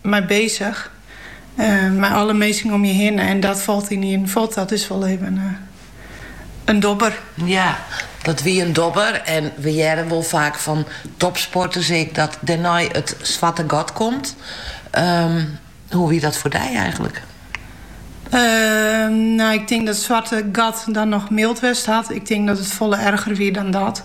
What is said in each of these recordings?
mei bezich. Mei alle minsken om je hinne. En dat falt yn ien kear falt dat dus wol even een domper. Ja, dat wie een dobber. En we hearre wol vaak van topsporters ek dat dêrnei het zwarte gat komt. Hoe wie dat voor dy eigenlijk? Ehm, nou, ik tink dat zwarte gat dan nog mild west hat. Ik tink dat het folle erger wie dan dat.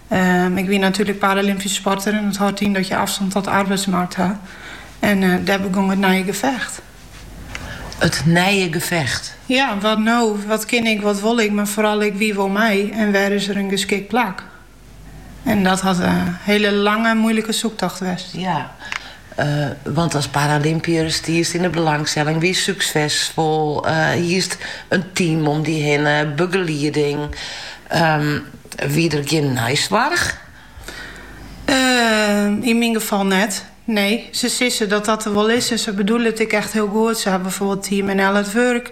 Ik wie natuerlik paralympysk sporter en dat hâldt yn dat je afstand tot de arbeidsmarkt ha. En eh, dêr begong it nije gevecht. It nije gevecht? Ja, wat no? Wat kin ik, wat wol ik, maar vooral ek wie wol mij en wêr is der een geschikt plak? En dat hat een hele lange, moeilijke zoektocht west. Ja, Want as paralympiër stiest yn 'e belangstelling, wiest súksesfol, hiest in team om dy hinne, begelieding. Wie der gjin neisoarch? Yn myn gefal net, nee. Se sizze dat dat der wol is en se bedoele it ek echt hiel goed. Se ha byfoarbyld Team NL at Work.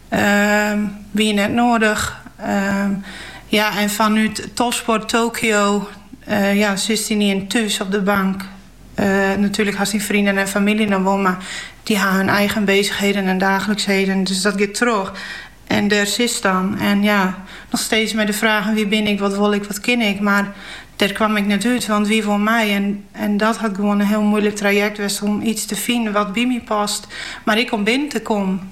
Ehm, wie net noardich. Ehm, ja, en fanút Topsport Tokio, eh, ja, sis dy nien thús op de bank. Eh, natuurlijk hast die vrienden en familie nog wel, maar die ha hun eigen bezigheden en dagelijksheden, dus dat giet troch. En der sis dan. En ja, nog steeds met de vragen wie bin ik, wat wol ik, wat kin ik, maar der kwam ik net uit, want wie wol mij? En, en dat had gewoon een heel moeilijk traject west om iets te vinden wat bij mij past, maar ik om binnen te komen.